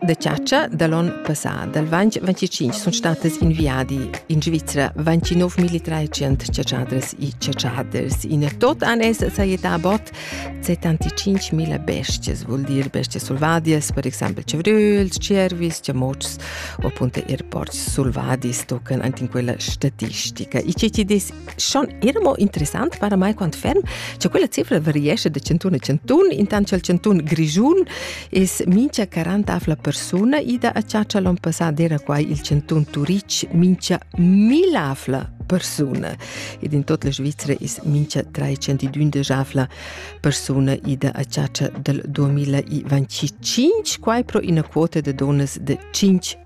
Da chatscha da l'on passà, dal ventg 25, sun statas in viadi in Svizra 29.300 chatschadras e chatschaders. In tot an es sajetà a bot 75.000 bestias, vuol dir bestias selvadias, per exempel chavröls, cervis, chamots o appunto er porcs selvadis tocan anche in quella statistica. I ce ci des schon era mo interessant para mai quant ferm cha quella cifra variescha da centun a centun intant cha'l centun grischun es mincha 40 afla persuna ida a chatscha l'on passà d'era quai il centun Turich mincha 1000 afla persuna ed in tot la Svizzera es mincha 312 afla persuna ida a chatscha dal 2025, quai pro ina quota da donas da 5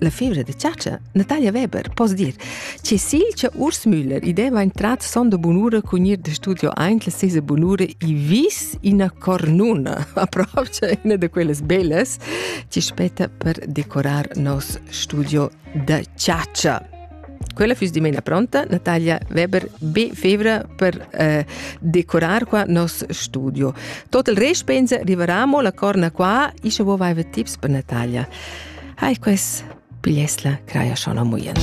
La fevra da chatscha, Natalia Weber, poss dir, che si che Urs Müller ideva entrat sonda bunura cun ir de studio eint la sesa bunura i vis ina cornuna, approacha una de quellas bellas, che spetta per decorar nos studio da chatscha. Quella füss dimena pronta, Natalia Weber, be febra per eh, decorar qua nos studio. Tot il rest pensa rivaramo la corna qua, isce vo vaiva tips per Natalia. Hai ques pigliesla craia sciona muien.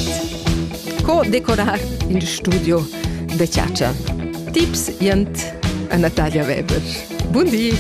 Co decorar il studio de ciaccia? Tips jent a Natalia Weber. Buondì!